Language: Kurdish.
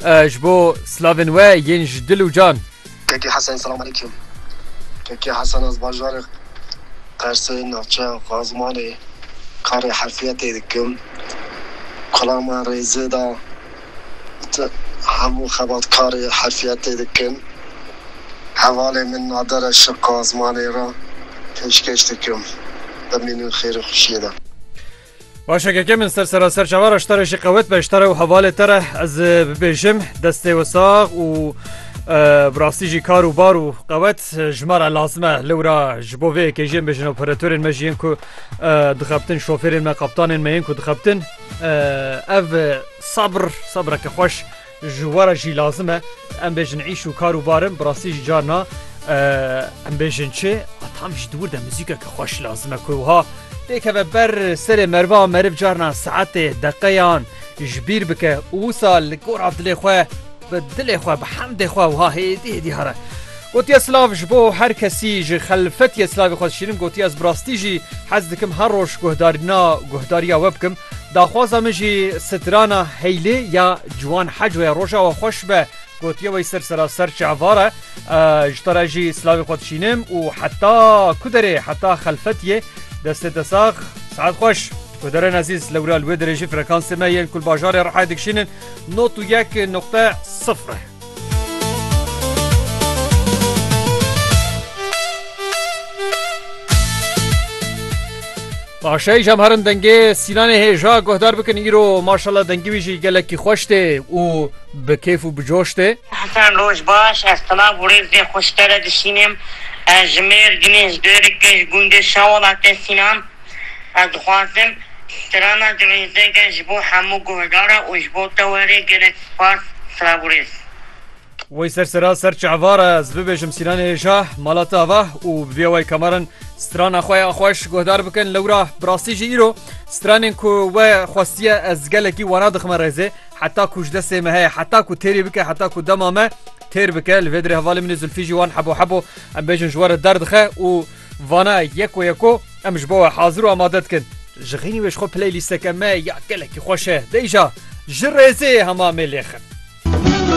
Ji bo slavên we yên ji dil û can. Kekê Hesen Selam Aleyküm Kekê Hesen ez bajarê Qersê navçeya Qazmanê karê herfiyetê dikim Kula me rêzê da got hemû xebatkarê herfiyetê dikin Hevalê min Nader e ji Qazmanê re pêşkêş dikim Bimînin xêr û xweşiyê de. Başa keke min ser seraser çava re ji te re jî qewet be ji te re û hevalê te re ez bibêjim destê we sax û bi rastî jî kar û bar û qewet ji me re lazim e li wira ji bo vê yekê jiyên bêjin operatörên me jiyên ku dixebtin şofêrên me qaptanên me yên ku dixebtin ev sabr sabreke xweş Ji we re jî lazim e em bêjin îş û kar û bar in, bi rastî jî carna em bêjin çi a tam jî dûr de muzîkeke xweş lazim e ku wiha têkeve ber serê merva meriv carna saetê deqeyan ji bîr bike û wisa li gora dilê xwe bi dilê xwe bi hemdê xwe wiha hêdî hêdî here. Gotiye silav ji bo her kesî ji xelfetiyê silavê xwe dişînim, gotiye ez bi rastî jî hez dikim her roj guhdarîna guhdariya we bikim. Daxwaza min jî strana Heylê ya Ciwan Heco ye. Roja we xweş be gotiye wey ser seraser çavar e. Ji te re jî silavê xwe dişînim û heta ku derê heta xelfetiyê destê te sax saet xweş. Guhdarên ezîz lewra li wê derê jî frekansê me yên ku li bajarê Rihayê dikişînin nod û yek noqte sifr e. Paşayê jam herin dengê sînanê hêja guhdar bikin îro maşala dengî wî jî gelekî xweş tê û bi kêf û bi coş tê. Hesen roj baş ez silav û rêzê xwe ji te re dişînim. Ez ji Mêrdînê ji Dêrikê ji gundê Şewalatê Sînan. Ez dixwazim strana di vê zêde ji bo hemû guhdaran û ji bo te were gelek spas Siraguris. Wey ser sera ser çehvar e ez bibêjim Sînanê Şah mala te ava û bi vî awayî kamarin strana xwe ya xweş guhdar bikin lewra bi rastî jî îro stranên ku we xwestiye ez gelekî wana dixime rêzê heta ku ji destê me heye heta ku têrî bike heta ku dema me têr bike li vê dirê hevalê min ê Zulfî jî wan hebo hebo em bêjin ji we re derdixe û Vana yeko yeko em ji bo we hazir û amade dikin. Ji xînî wê ji xwe playlîsteke me ya gelekî xweş e. Deyja, Ji rêzê hema mêlê xin.